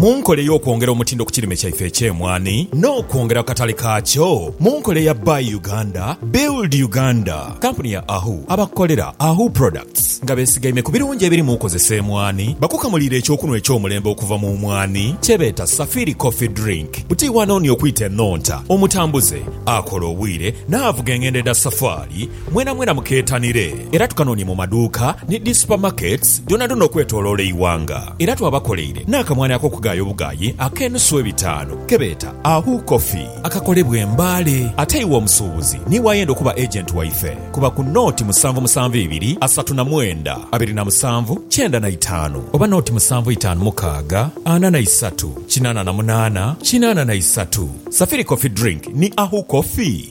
Mu nkola ey'okwongera omutindo ku kirime kyaife eky'emwaani n'okwongera ku katale kaakyo mu nkola eya Buy Uganda, Build Uganda, kampuni ya Ahu abakolera Ahu Products nga besigaime ku birungi ebiri mu kozesa emwaani bakukamuliire eky'okunhwa eky'omulembe okuva mu mwaani kyebeeta Safiri Coffee Drink buti wano ni okwita enhonta omutambuze akola obwire n'avuga engendo edha safaali Mwenamwena mukeetanire era tukanoonye mu maduuka ni dhi supamaketi dhoonadhoona okwetooloola eighanga. Era twabakoleire n'akamwani ak'okugaaya obugaayi ak'enusu ebitaanu ke beeta Ahu Coffee. Akakolebwa e Mbale. Ate iwe omusuubuzi niiwe ayenda okuba agenti waife, kuba ku nooti musanvu musanvu ibiri asatu na mwenda abiri na musanvu kyenda na itaanu oba nooti musanvu itaanu mukaaga ana na isatu kinaana na munaana kinaana na isatu. Safiri Coffee Drink ni Ahu Coffee.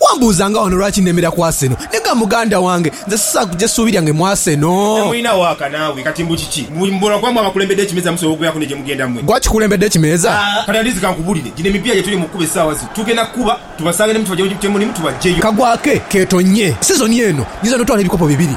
Wambuuza nga wano lwaki nemera ku Arsenal. Nega muganda wange, nze sisaaku gyesuubirya nge mu Arsenal. Temulina waaka naawe kati mbu kiki? Mbu mbula kuba mwe abakulembedde ekimeeza musobola okubeeraku ne gye mugenda mwe? Gwe akikulembedde ekimeeza? Kati andizi kankubulire, gino emipiira gye tuli mu kukuba essaawa zino tugenda kukuba tubasange ne mutuba gye mulimu tubaggyeyo. Kagwa ke keetonnye sizoni eno. Nyiza n'otwala ebikopo bibiri.